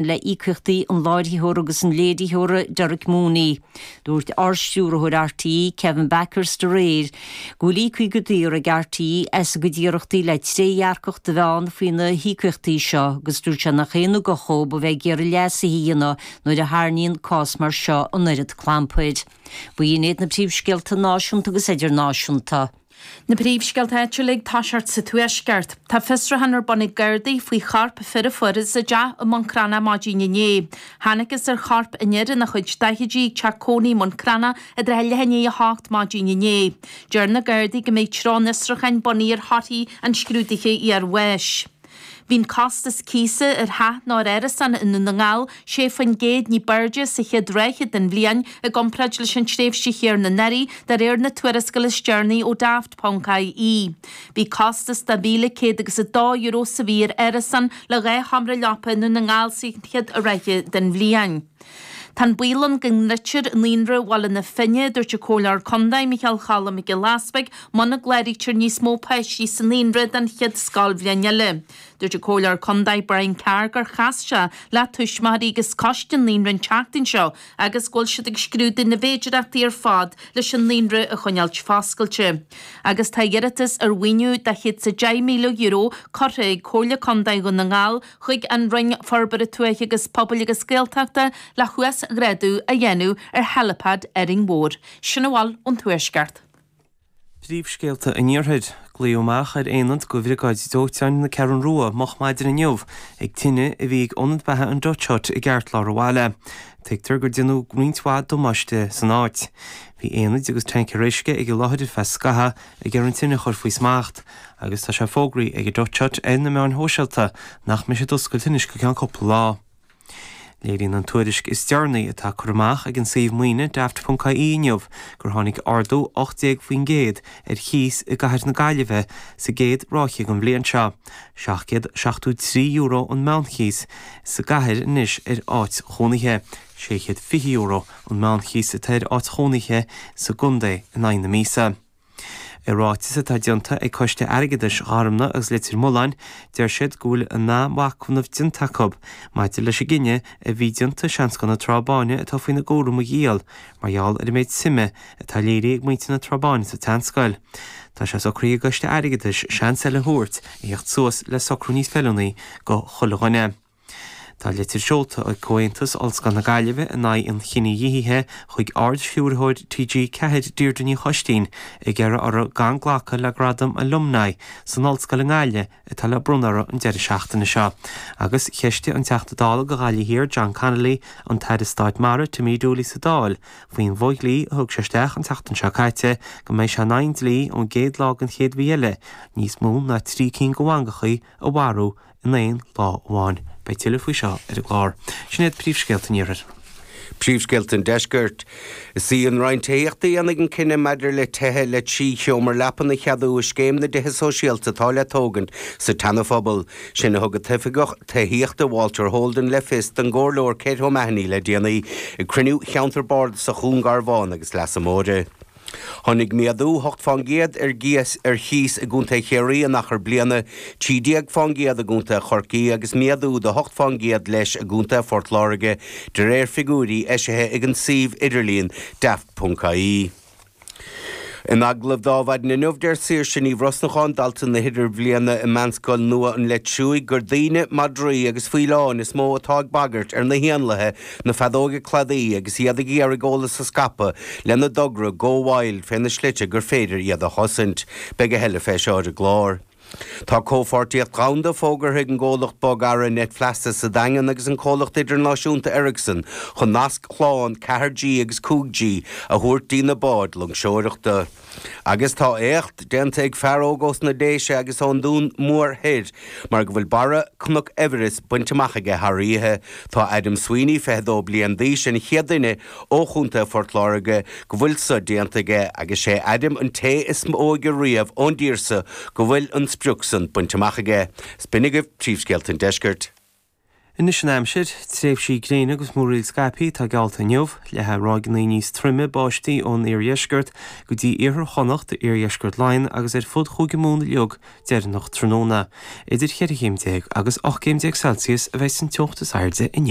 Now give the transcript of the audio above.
le íocaíochtaí an láithreora agus an léiritheora Derek Mooney. Dúirt Ardstiúrthóir RTÉ, Kevin Bakhurst, aréir go bhfuil íoctha go daor ag RTÉ as a gcuid iarrachtaí le trédhearcacht a bheith ann faoi na híocaíochtaí seo agus dúirt sé nach aon ugach dhó a bheith ag iarraidh leasuithe a dhéanamh nuair a tharraingíonn cás mar seo an oiread clampair. B'in iad na príomhscéalta náisiúnta agus idirnáisiúnta. Na príomhscéalta áitiúla ag toiseacht sa Tuaisceart. Tá fiosrúchán ar bun ag Gardaí faoi chorp fir a fuarthas i dteach i mBun Cranncha maidin inné. Thángthas ar chorp an fhir ina chuid daichidí ag teach cónaí i mBun Cranncha i dtrátha leath i ndiaidh a 8 maidin inné. Deir na Gardaí go mbeidh treo an fhiosrúcháin bunaithe ar thorthaí an scrúdaithe iarbháis. Bhí costas cíosa ar theach nó ar árasán i nDún na nGall 6 faoin gcéad ní b'airde sa chéad ráithe den bhliain i gcomparáid leis an tréimhse chéanna anuraidh, de réir na tuarascála is deireanaí ó Daft, Ponc, IE. Bhí costas €2,100 agus €2 sa mhí ar árasán le dhá sheomra leapa i nDún na nGall sa chéad ráithe den bhliain. Tá an baol ann go ndruidfear Naíonra Bhaile na Finne, a dúirt an Comhairleoir Contae, Micheál Chalum Mac Giolla Easpaig, muna gcláraítear níos mó páistí sa naíonra don chéad scoilbhliain eile. Dúirt an Comhairleoir Contae, Brian Carr gur chas sé le tuismitheoirí agus coiste an naíonra an tseachtain seo agus go bhfuil siad ag scrúdú na bhféidireachtaí ar fad leis an naíonra a choinneáilt foscailte. Agus tá iarratas ar mhaoiniú de chéad sa €10,000 curtha ag Comhairle Contae Dhún na nGall chuig an Roinn Forbartha Tuaithe agus Pobail agus Gaeltachta le huasghrádú a dhéanamh ar helipad Árainn Mhór. Sin a bhfuil ón Tuaisceart. Príomhscéalta an Iarthair. Glaodh amach ar aonad go Bhriogáid Dóiteáin na Ceathrún Rua moch maidin inniu ag tine a bhí ag Ionad Beatha an Dutch Hut i gceartlár an bhaile. Tuigtear gur déanadh roinnt mhaith damáiste san áit. Bhí aonaid agus tancaeir uisce ag an láthair ar feadh scaitheamh. ag iarraidh an tine a chur faoi smacht agus tá sé fógraithe ag an Dutch Hut ar na meáin shóisialta nach mbeidh siad oscailte anois go ceann cúpla lá. Léiríonn an tuairisc is deireanaí atá curtha amach ag an suíomh maoine Daft ponc ie inniu gur tháinig ardú 18% ar chíos i gcathair na Gaillimhe sa gcéad ráithe den bhliain seo. €773 an meánchíos sa gcathair anois ar áit chónaithe. €620 an meánchíos atá ar áit chónaithe sa gcontae in aghaidh na míosa. I ráiteas atá déanta ag Coiste Airgeadais Ghorumna agus Leitir Mealláin, deir siad go bhfuil an-mhachnamh déanta acu maidir leis an gcinneadh a bhí déanta seanscoil na Trá Báine atá faoina gcúram a dhíol mar gheall ar an méid suime atá léirithe ag muintir na Trá Báine sa tseanscoil. Tá sé socraithe ag an gCoiste Airgeadais seans eile a thabhairt a thíocht suas le socrú níos feiliúnaí go chuile dhuine. Tá litir seolta ag Comhaontas Ollscoil na Gaillimhe in aghaidh an chinedhíothaithe chuig Ard-Stiúrthóir TG4 Deirdre Ní Choistín ag iarraidh orthu gan glacadh le gradam Alumni san Ollscoil i nGaillimh atá le bronnadh orthu an deireadh seachtaine seo agus cheistigh an Teachta Dála do Ghaillimh Thiar John Connolly an tAire Stáit Mara Timmy Dooley sa Dáil faoin bhfo dhlí a thug sé isteach an tseachtain seo caite go mbeidh sé in aghaidh an dlí ón gcéad lá den chéad mhí eile níos mó ná trí cinn de bhangachaí a mharú in aon lá amháin. Beidh tuilleadh faoi seo ar an gclár. Sin iad príomhscéalta an Iarthair. Príomhscéalta an Deiscirt. Is í an Roinn Tithíochta a dhéanfaidh an cinneadh maidir le tithe le trí sheomra leapan a cheadú i Scéim na dTithe Sóisialta atá le tógaint sa tSeanaphobal. Sin a thug an t-oifigeach tithíochta Walter Holden le fios don gComhairleoir Kate O'Mahony le déanaí ag cruinniú Cheantar Bardasach Dhún Garbhán agus Leasa Móire. Tháinig méadú ocht fán gcéad ar gcíos ar chíos i gContae Chiarraí in achar bliana, trí déag fán gcéad i gContae Chorcaí agus méadú de hocht fán gcéad leis i gContae Phort Láirge, de réir figiúirí eisithe ag an suíomh idirlíon Daft.ie. In agallamh do mhaidin inniu, deir Saoirse Ní Bhrosnacháin, dalta na hIdirbhliana i Meánscoil nua an Leitriúigh, gur daoine, madraí agus faoileáin is mó atá ag bagairt ar na héanlaithe Na feadóige cladaí agus iad ag iarraidh eolas a scaipeadh lena dtogra Go Wild fé na slite gur féidir iad a chosaint. Beidh a thuilleadh fé seo ar an gclár. Tá comhpháirtíocht dhomhanda fógartha ag an gcomhlacht bogearra Net Feasa sa Daingean agus an comhlacht idirnáisiúnta Ericsson chun nasc slán 4G agus 5G a thabhairt dtína báid loingseoireachta. Agus tá éacht déanta ag fear óg ós na Déise agus ón Dún Mór Thoir, mar go bhfuil barra Cnoc Everest bainte amach aige thar oíche. Tá Adam Sweeney, 22 bliain d'aois, an chéad duine ó chontae Phort Láirge go bhfuil seo déanta aige agus sé Adam an té is óige riamh ón dtír seo go bhfuil an sprioc san bainte amach aige. Is b'in agaibh Príomhscéalta an Deiscirt. Anois an aimsir, tréimhsí gréine agus múraíl scaipthe atá geallta inniu, le ráigí níos troime báistí ón iardheisceart go dtí iarthar Chonnacht, iardheisceart Laighean agus ar fud Chúige Mumhan uilig deireanach tráthnóna. Idir 14 chéim agus 18 céim Celsius a bheidh an teocht is airde inniu.